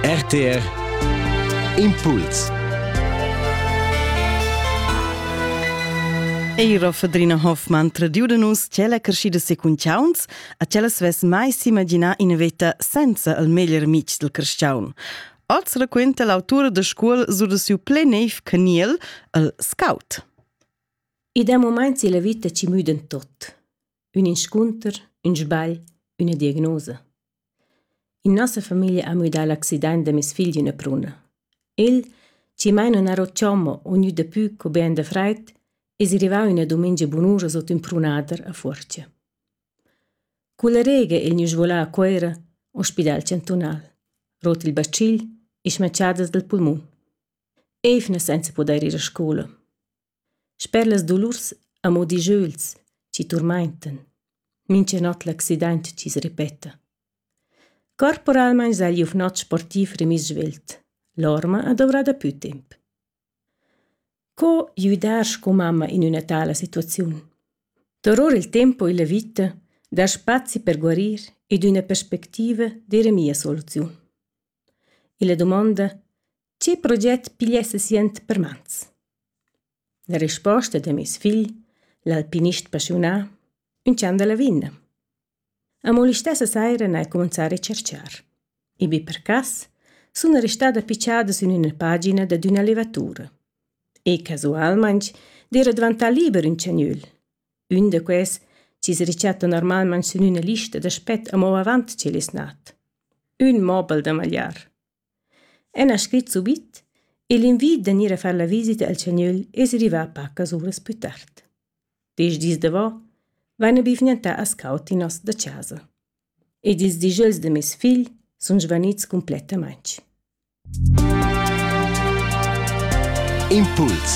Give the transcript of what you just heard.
RTR Impuls Eira Fadrina Hoffmann tradiu da nus tschella creschida secunchauns a tschella svess mai s'imaginar ina veta senza il meglier mic del crestiaun. Oz raquenta l'autura da scuol sur da siu ple neiv caniel, il scout. E da moment si la vita ci müden tot. ün inscunter, ün sbagl, üna diagnosa. In nossa famiglia ha müdà l'accident da meis figl üna pruna. El, chi mai non aro chommo o gnü dapü co be da fraid, es rivà üna dumengia bunura sot ün prunader a Fuorcha. Culla rega el gnü svolà a Cuera, ospidal chantunal, rot il bacil e schmatschadas dal pulmun. Eivna senza pudair ir a scoula. Sper las dolurs amo dischögls chi turmaintan mincha not l'accident chi's repeta. Corporalmaing s'haja ün not sportiv remiss svelt. L'orma ha dovrà dapü temp. Co güdar sco mamma in üna tala situaziun? Toror il tempo illa vita, dar spazi per guarir ed üna perspectiva d'eira mia soluziun. Illa dumonda «Tge proget pigliessa siand per mans?» La resposta da meis figl, l'alpinist paschiunà, ünch'an da Lavinna. Amo l'istessa saira n'ha el cumanzà a retscharchar. I be per cas suna restada pitschada sün üna pagina dad üna levatura. E casualmaing d'eira dvantà liber ün chagnöl. Ün da quels chi's rechatto normalmaing sün üna lista da spet amo avant ch'el es nat. ün mobel da magliar. El ha scrit subit e l'invid da gnir a far la visita al chagnöl es rivà pacas uras plü tard. Desch dis davo vaina bivgnantà as caud in nos da chasa. Ed ils dijöls da meis figl sun svanits cumplettamaing. Impuls